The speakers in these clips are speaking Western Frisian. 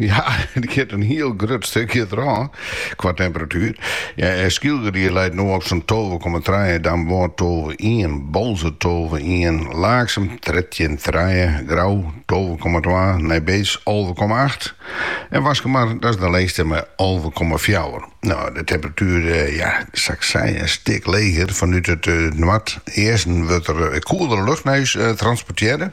Ja, it giet in hiel grut stikje der ôf qua temperatuer. Ja, eh, Skylge dy leit noch op sa'n tolve komma trije, Damwâld tolve komma ien, Boalsert tolve komma ien, Laaksum trettjin komma trije, Grou tolve komma twa, Nijbeets alve komma acht en Waskemar, dat is de lêste, mei alve komma fjouwer. No, de temperatuer, eh, ja, sa ik sei, in stik leger. Fanút it eh, noardeasten wurdt der eh, koelere lucht nei ús eh, transportearre.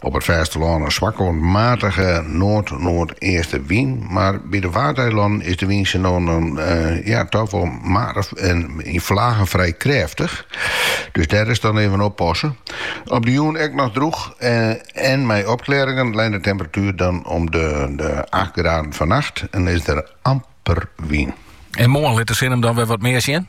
Op it fêstelân in swakke oant matige noard-noardeastewyn, mar by de Waadeilannen is de wyn sa no en dan toch wol matich en yn flagen frij krêftich. Dus dêr is dan even oppasse. Op de jûn ek noch drûch en mei opklearringen, leit de temperatuer dan om de acht graden. Fannacht en is der amper wyn. En moarn lit de sin him dan wer wat mear sjen.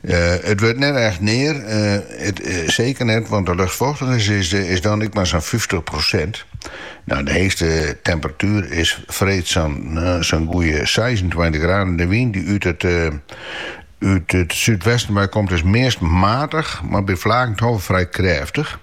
It wurdt net echt near, seker net, want de luchtfochtigens is dan ek mar sa'n fyftich prosint. Nou, de heechste temperatuer is freed sa'n goeie seisentweintich graden. De wyn dy't út it súdwesten wei komt is meast matich, mar by flagen toch wol frij krêftich.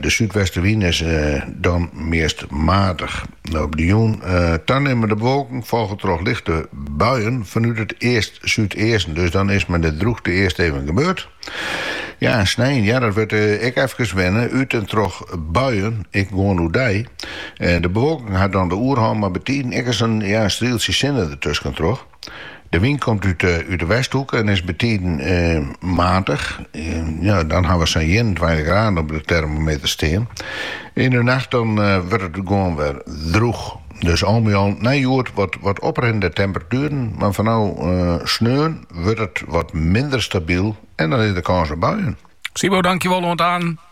De súdwestenwyn is dan meast matich. Op de jûn tanimmende bewolking folge troch lichte buien fanút it east-súdeasten. Dus dan is mei de droechte earst even gebeurd. Ja, en snein, ja, dat wurdt ek efkes wenne. Ut en troch buien, ek gewoan oerdei en de bewolking hat dan de oerhân, mar betiden ek ris in strieltsje sinne dertusken troch. De wyn komt út de westhoeke en is betiden matich. Dan hawwe we sa'n 21 graden op de termometer stean. Yn de nacht dan wurdt it gewoan wer drûch. Dus al by al nei hjoed wat oprinnende temperatueren, mar foaral sneon wurdt it wat minder stabyl en dan is der kâns op buien. Sybo, dankjewol oant aan.